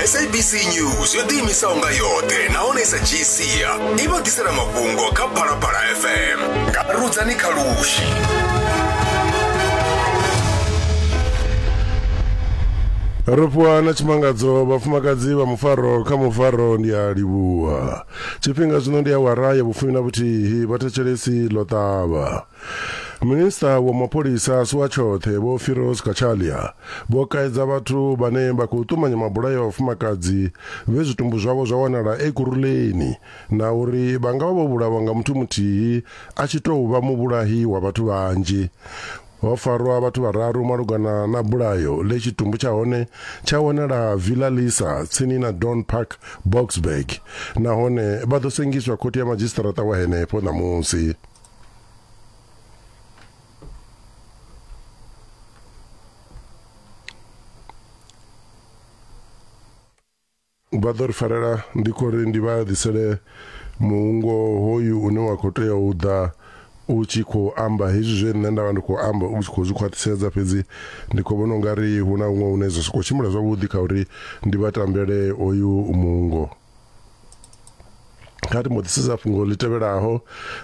sabc news yo ḓiimisaho nga yoṱhe nahone i sa dzhii sia i vha ḓisela mafhungo kha phalaphala fm nga rudzani kha lushi ro fhiwa na tshimangadzo vhafumakadzi vha mufaro kha mufaro ndi a livhuwa tshifhinga zwino ndi awara ya vhufumi na vhuthihi vhathetshelesi ḽo ṱavha Minista wa mapholisa a si wa tshoṱhe Vho Firoz Cachalia vho kaidza vhathu vhane vha khou ṱumanya mabulayo a vhafumakadzi vhe zwitumbu zwavho zwa wanala e Kuruleni na uri vha nga vha vho vhulawa nga muthu muthihi a tshi tou vha muvhulahi wa vhathu vhanzhi. Ho farwa vhathu vhararu malugana na bulayo ḽe tshitumbu tsha hone tsha wanala Villa Lisa tsini na Dawn Park Boksburg nahone vha ḓo sengiswa khothe ya madzhisiṱaraṱa wa henefho ṋamusi. vha ḓo ri farela ndi khou ri ndi vha ḓisele muungo hoyu une wa khou tea u ḓa u tshi khou amba hezwi zwe nṋe ndavha ndi khou amba u tshi khou zwi khwaṱhisedza fhedzi ndi khou vhona ungari hu na huṅwe hune zwa sokou tshimbila zwavhuḓi kha uri ndi vha tambele hoyu muungo kha ri mbo ḓi sedza fhungo ḽi tevhelaho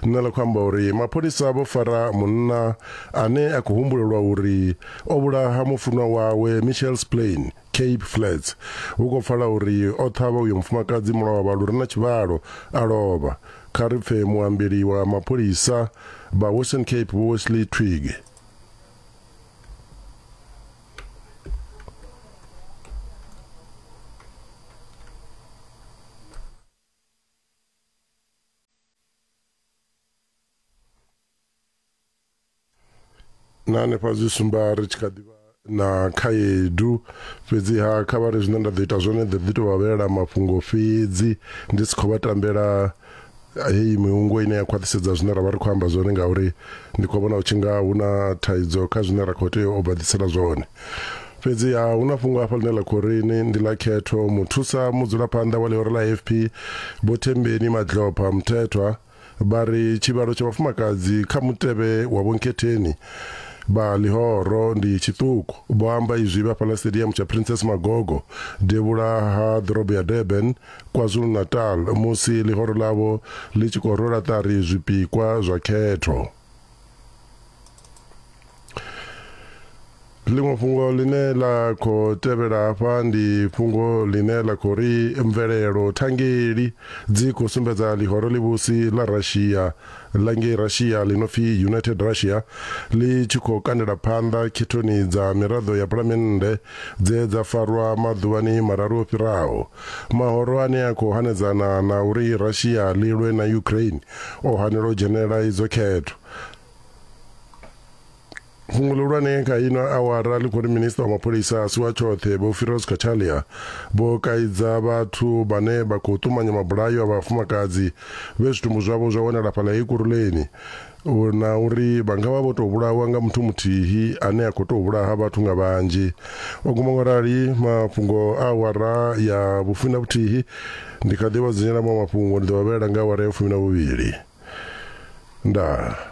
ḽine ḽa khou amba uri mapholisa vho fara munna ane a khou humbulelwa uri o vhulaha mufunwa wawe michel splain cape flats hu khou pfala uri o ṱhavha uyo mufumakadzi mulovha lu re na tshivhalo a lovha kha ri pfe muambeli wa mapholisa vha western cape vho wesley twig na hanefha zwi sumba ri tshi kha ḓivha na khaedu fhedziha kha vha ri zwine nda ḓo ita zwone ḓo ḓi tou vha vhelela mafhungo fhedzi ndi si khou vha tambela heyi mihungo ine ya khwaṱhisedza zwine ra vha ri khou amba zwone ngauri ndi khou vhona u tshi nga hu na thaidzo kha zwine ra khou tea u baḓisela zwone fhedziha hu na fhungo hafha ḽine ḽa khou ri ni ndi ḽa khetho muthusa mudzulaphanḓa wa ḽihoro ḽa afp vho thembeni madlopha muthethwa vha ri tshivhalo tsha vhafumakadzi kha mutevhe wa vhonkhetheni vha ḽihoro ndi tshiṱuku vho amba izwi vha fhaḽa stadium tsha princess magogo devhula ha ḓorobo ya durban KwaZulu-Natal musi ḽihoro ḽavho ḽi tshi khou rwela ṱari zwipikwa zwa khetho. Ḽiṅwe fhungo ḽine ḽa khou tevhela hafha ndi fhungo ḽine ḽa khou ri mvelelo thangeli dzi khou sumbedza ḽihoro ḽivhusi ḽa Russia ḽa ngei Russia ḽi no pfi United Russia ḽi tshi khou kandela phanḓa khethoni dza miraḓo ya phalamennde dze dza farwa maḓuvhani mararu o fhiraho. Mahoro ane a khou hanedzana na uri Russia ḽi lwe na Ukraine o hanelwa u dzhenela idzo khetho. fhungo ḽihulwane kha ino awara ḽi khou ri minista wa mapholisa a si wa tshoṱhe vho firos katalia vho kaidza vhathu vhane vha khou ṱumanya mabulayo a vhafumakadzi vhe zwitumbu zwavho zwa wanala fhaḽa ekuruleni na uri vha nga vha vho tou vhulawa nga muthu muthihi ane a khou tou vhulaha vhathu nga vhanzhi o guma ngo rali mafhungo a awara ya vhufumi na vhuthihi ndi kha ḓi vha dzunyela maṅwe mafhungo ndi ḓo vha vhela nga awara ya fumi na vhuvhili ndaa